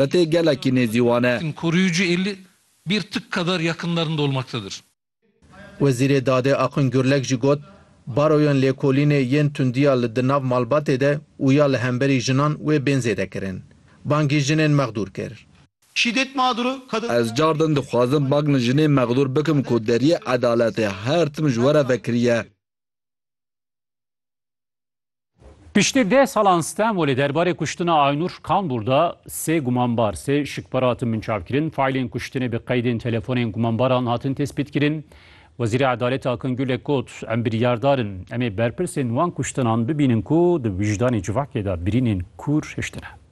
Xetê gelekî nêzî wan e. Koruyucu eli bir tık kadar yakınlarında olmaktadır. Wezîrê Dadê Akın Gürlek jî got, Baroyên lêkolînê yên tundiya li di nav malbatê de û ya li hemberî jinan wê bên zêdekirin. Bangî jinên mexdûr kir. Şîdet mağduru kadın. Ez car din dixwazim bang li jinên mexdûr bikim ku deriyê edaletê her tim ji we re vekiriye. Piştî deh salan Stenbolê derbarê kuştina Aynur Kambur de sê gumanbar, sê şikpar hatin binçavkirin. Faîlên kuştinê bi qeydên telefonên gumanbaran hatin tespîtkirin. Wezîrê Edaletê Akin Gulek got, Em biryardar in. Em ê berpirsên wan kuştinan bibînin ku di wijdanê civakê de birînên kûr hiştine.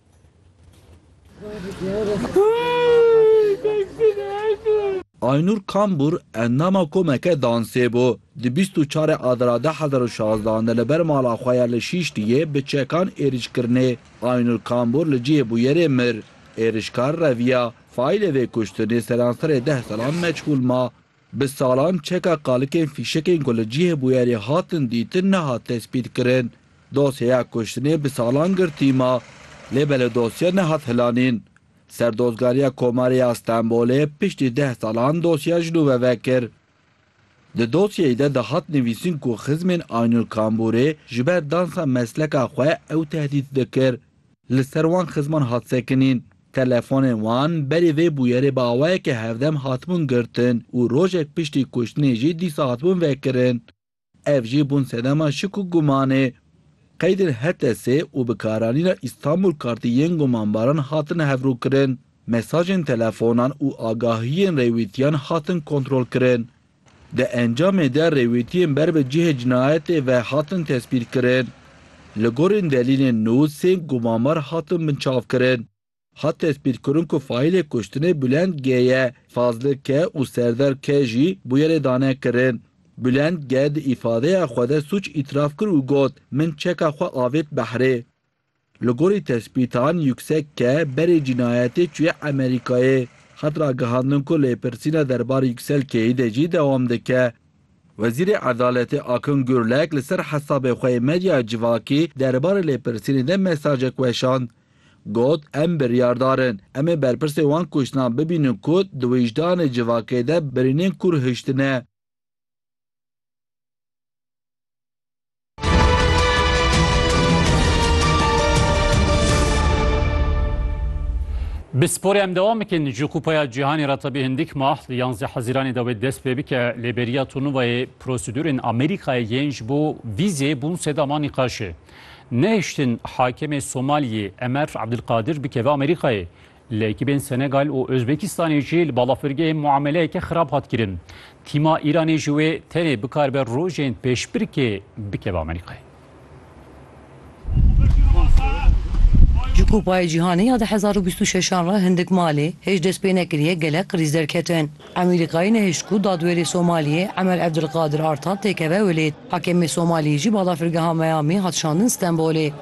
Aynur Kambur endama komeke dansê bû. Di bîst û çar e Adara du hezar û şazdeh an de li ber mala xwe ya li Şîşliyê bi çekan êrîşkirinê Aynur Kambur li cihê bûyerê mir. Êrîşkar reviya. Faîlê vê kuştinê seranserê deh salan meçhûl ma. Bi salan çeka qalikên fîşekên ku li cihê bûyerê hatin dîtin nehat tespîtkirin. Dosyeya kuştinê bi salan girtî ma, lê belê dosye nehat hilanîn. Serdozgariya Komarê ya Stenbolê piştî deh salan dosyeya ji nû ve vekir. Di dosyeyê de dihat nivîsin ku xizmên Aynur Kambûrê ji ber dansa mesleka xwe ew tehdît dikir. Li ser wan xizman hat sekinîn. Telefonên wan berî vê bûyerê bi awayeke hevdem hatibûn girtin û rojek piştî kuştinê jî dîsa hatibûn vekirin. Ev jî bûn sedema şik û gumanê. Qeydên HTS û bikaranîna Îstanbul Kartî yên gumanbaran hatin hevrûkirin. Mesajên telefonan û agahiyên rêwîtiyan hatin kontrolkirin. Di encamê de rêwîtiyên ber bi cihê cinayetê ve hatin tespîtkirin. Li gorîn delîlên nû sê gumamer hatin binçavkirin. Hat tespîtkirin ku faîlê kuştinê Bulend G ye, Fazli K û Serdar K jî bûyerê dane kirin. Bulend G di îfadeya xwe de sûc îtiraf kir û got, Min çeka xwe avêt behrê. Li gorî tespîtan Yûksek ke berê cînayetê çûye Emerîkayê, hat ragihandin ku lêpirsîna derbar Yûksel K'yî de jî dewam dike. Wezîrê Edaletê Akın Gürlek li ser hesabê xwe yê medya civakî derbarê lêpirsînê de mesajek weşand. Got, Em biryardar in. Em ê berpirsê wan kuştinan bibînin ku di wijdanê civakê de birînên kûr hiştine. Bi sporê em dewam bikin ji Kupaya Cîhanê re tebî hindik mah li yanzdeh Hezîranê dawê dest pê bike lê beriya turnuvayê prosedûrên Amerîkayê yên ji bo vîzê bûn sedama nîqaşê. Nehiştin hakemê Somaliyê Emer Abdulkadir bikeve Amerîkayê Li ekîbên Senegal û Ozbekistanê jî li balafirgehê muameleyeke xirab hat kirin. Tîma Îranê ji wê tenê bikaribe rojên pêşbirkê bikeve Amerîkayê. Ji Kupayê Cîhanê ya du hezar û bîst û şeş an re hindik malê hêj dest pê nekiriye gelek qirîz derketin. Amerîkayê nehişt ku dadwêrê Somaliyê Emer Evdilqadir Artan têkeve Welêt. Hakemê Somaliyê jî balafirgeha Miami hat şandin Stenbolê.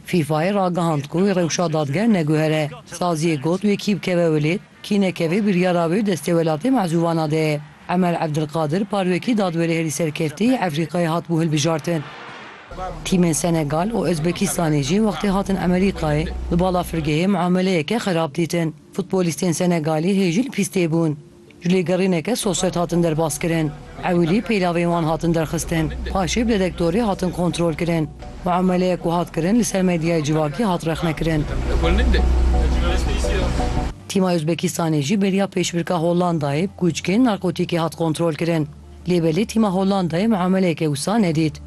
FIFA'yê ragihand ku wê rewşa dadger neguhere. Saziyê got wê kî bikeve Wilêd, kî nekeve biryara wê destê welatê mezûvana de ye. Emel Evdilqadir parwekî dadwerê herî serkeftî yê Efrîqayê hatibû hilbijartin. Tîmên Senegal û Ozbekistanê jî wextê hatin Emerîkayê li bala firgehê muameleyeke xerab dîtin. Futbolîstên Senegalî hê jî li pîstê bûn. Ji lêgerîneke sosyet hatin derbaskirin. Ewilî pêlavên wan hatin derxistin, paşê bi detektorê hatin kontrolkirin. Muameleyek ku hat kirin li ser medyaya civakî hat rexnekirin. Tîma Uzbekistanê jî beriya pêşbirka Hollandayê bi kûçkên narkotîkê hat kontrolkirin. Lê belê tîma Hollandayê muameleyeke wisa nedît.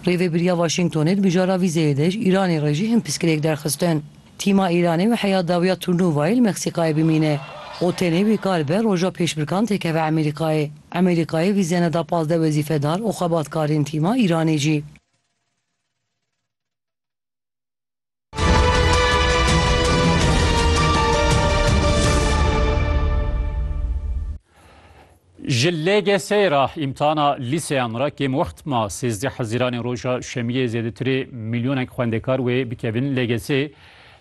Rêvebiriya Waşîngtonê di mijara vîzeyê de ji Îranê re jî hin piskirêk derxistin. Tîma Îranê weheya dawiya turnûvayê li Meksîkayê bimîne û tenê wê kar be roja pêşbirkan tê keve Emerîkayê. Emerîkayê vîze neda pazdeh wezîfedar û xebatkarên tîma Îranê jî. Ji LGS'ê re îmtihana lîseyan re kêm wext ma sêzdeh hezîranê roja şemiyê zêdetirê milyonek xwendekar wê bikevin LGS'ê.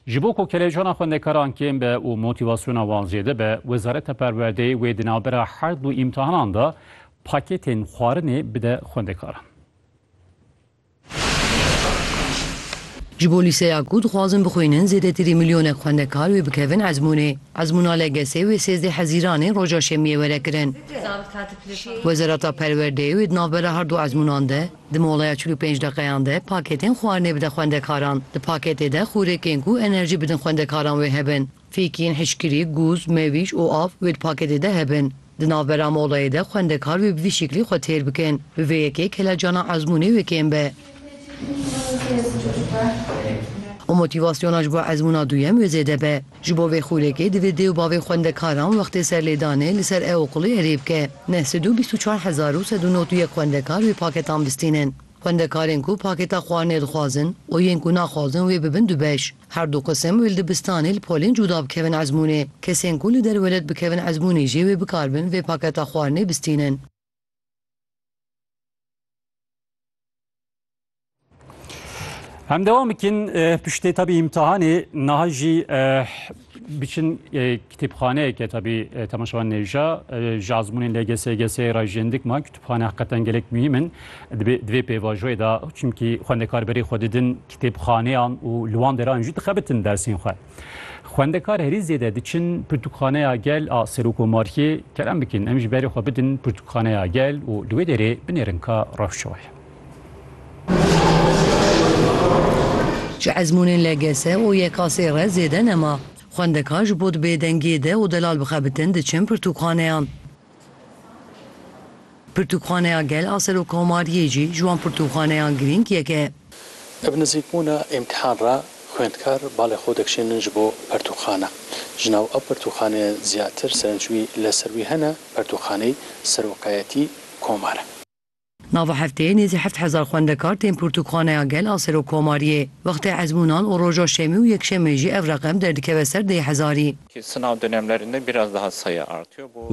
Ji bo ku kelejana xwendekaran kêm be û motivasyona wan zêde be, Wezareta Perwerdeyê wê di navbera her du îmtihanan de paketên xwarinê bide xwendekaran. Ji bo lîseya ku dixwazin bixwînin zêdetirî milyonek xwendekar wê bikevin ezmûnê. Ezmûna LGS wê sêzdeh hezîranê roja şemiyê were kirin. Wezareta Perwerdeyê wê di navbera her du ezmûnan de di moleya çil û pênc deqeyan de pakêtên xwarinê bide xwendekaran. Di pakêtê de xûrêkên ku enerjî bidin xwendekaran wê hebin. Fêkiyên hişkirî, gûz, mewîj û av wê di paketê de hebin. Di navbera molayê de xwendekar wê bi vî şeklî xwe têr bikin. Bi vê yekê kelecana ezmûnê wê kêm be. Û motîvasyona ji bo ezmûna duyem wê zêde be. Ji bo vê xûrekê divê dê û bavê xwendekaran wextê serlêdanê li ser ew qulê erê bike. Neh sed û bîst û çar hezar û sed û nod û yek xwendekar wê paketan bistînin. Xwendekarên ku paketa xwarinê dixwazin û yên ku naxwazin wê bibin du beş. Her du qisim û li dibistanê li polên cuda bikevin ezmûnê. Kesên ku li derve let bikevin ezmûnê jî wê bikaribin vê paketa xwarinê bistînin. Em dewam bikin piştê tabî îmtihanê niha jî biçin Kitêbxaneyeke tabi temaşa wan nêja ji azmûnên LGS, GS ra jî hin dikma kitûbxane heqetan gelek muhîm in dibê di vê pêvajoyê de çimkî xwendekar berê xwe didin kitêbxaneyan û li wan deran jî dixebitin dersên xwe. Xwendekar herî zêde diçin Pirtûkxaneya Gel a Serokomariyê kerem bikin em jî berê xwe bidin Pirtûkxaneya Gel û li wê derê binêrin ka rewşoyê. Ji ezmûnên LGS û YKS'ê re zêde nema. Xwendekar ji bo di bêdengiyê de û delal bixebitin diçin pirtûkxaneyan. Pirtûkxaneya Gel a Serokomariyê jî ji wan pirtûkxaneyan girîng yek e. Li bi nizîkbûna îmtîhan re xwendkar balê xwe dikişînin ji bo pirtûkxane. Ji nav ew pirtûkxaneyên zêdetir serenc wî li ser wî hene, Pirtûkxaneyî Seroqeyetî Komar e. Nava hefteyê nêzî heft hezar xwendekar tên pirtûkxaneya gel a Serokomariyê. Wextê ezmûnan û roja şemî û yekşemê jî ev reqem derdikeve ser deh hezarî.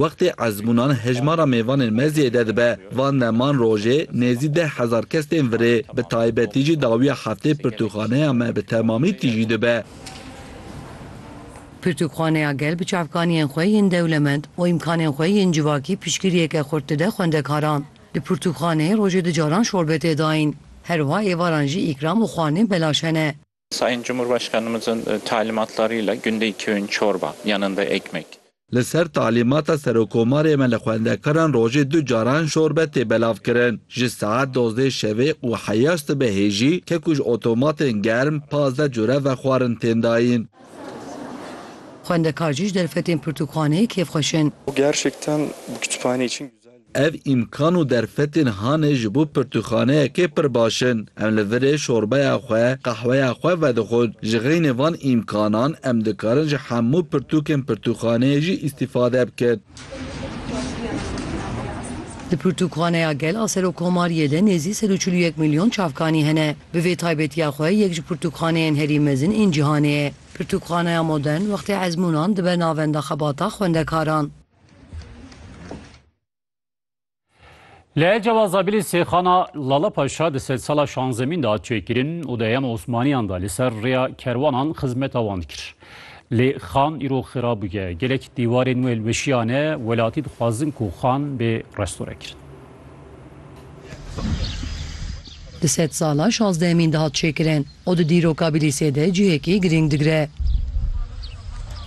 Wextê ezmûnan hejmara mêvanên me zêde dibe. Van deman rojê nêzî deh hezar kes tên virê. Bi taybetî jî dawiya heftê pirtûkxaneya me bi temamî tîjî dibe. Pirtûkxaneya Gel bi çavkaniyên xwe yên dewlemend û îmkanên xwe yên civakî piştgiriyeke xurt dide xwendekaran. Di pirtûkxaneyê rojê du caran şorbe tê dayîn. Her wiha êvaran jî îkram û xwarinên belaş hene. Sayın Cumhurbaşkanımızın talimatlarıyla günde iki öğün çorba, yanında ekmek. Li ser talîmata Serokomarê me li xwendekaran rojê du caran şorbe tê belavkirin. Ji saet dozdeh şevê û heya sibe hêjî kek û ji otomatên germ pazdeh cure vexwarin tên dayîn. Xwendekar jî ji derfetên pirtûkxaneyê kêfxweş in. Ev îmkan û derfetên hanê ji bo pirtûkxaneyekê pir baş in. Em li virê şorbeya xwe, qehweya xwe vedixwin. Ji xeynê van îmkanan em dikarin ji hemû pirtûkên pirtûkxaneyê jî îstîfade bikin. Di pirtûkxaneya gel a Serokomariyê de nêzî sed û çil û yek milyon çavkanî hene. Bi vê taybetiya xwe yek ji pirtûkxaneyên herî mezin ên cîhanê ye. Pirtûkxaneya modern wextê ezmûnan dibe navenda xebata xwendekaran. Lê cewa Zabilî Sêxana Lala Paşa di sedsala şanzemîn de hat çêkirin û di heyama Osmaniyan de li ser rêya kerwanan xizmeta wan dikir. Lê xan îro xira bûye. Gelek dîwarên wê li weşiya ne, welatî dixwazin ku xan bê restore kirin. Di sedsala şazdehemîn de hat çêkirin û di dîroka Bilîsê de cihekî girîng digire.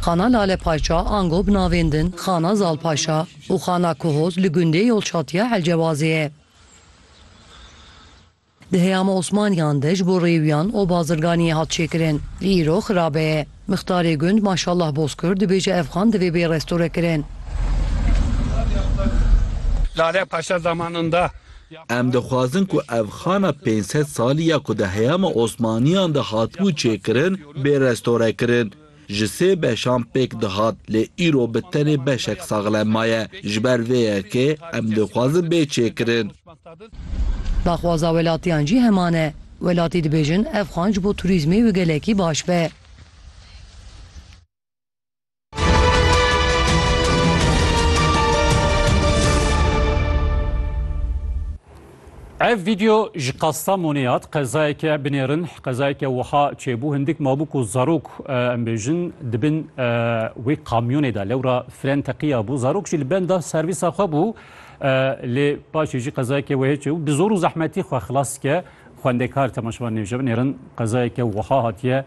Xana Lale Paşa ango bi navên din Xana Zal Paşa, û xana Kuhoz li gundê Yolçatiya Elcewazê ye. Di heyama Osmaniyan de ji bo rêwiyan oba Zirganiyê hat çêkirin. Îro xirabe ye. Mixtarê gund Maşallah Bozkurt dibêje ev xan divê bê restorekirin. Lale Paşa zamanında. Em dixwazin ku ev xana pênc sed salî ya ku di heyama Osmaniyan de hatibû çêkirin bê restorekirin. Ji sê beşan pêk dihat lê îro bi tenê beşek saxlem maye. Ji ber vê yekê em dixwazin bê çêkirin. Daxwaza welatiyan jî heman e. Welatî dibêjin ev xan ji bo turîzmê wê gelekî baş be. Ev vîdeo ji Kastamonê hat, qezayeke binêrin, qezayeke wiha çêbû, hindik mabû ku zarok em bêjin di bin wê kamyonê de, lewra fren teqiya bû, zarok jî li benda servîsa xwe bû, lê paşê jî qezayeke wê çêbû, bi zor û zehmetî xwe xilas dike xwendekar, temaşevan nêbijebin, nêrin qezayeke wiha hatiye.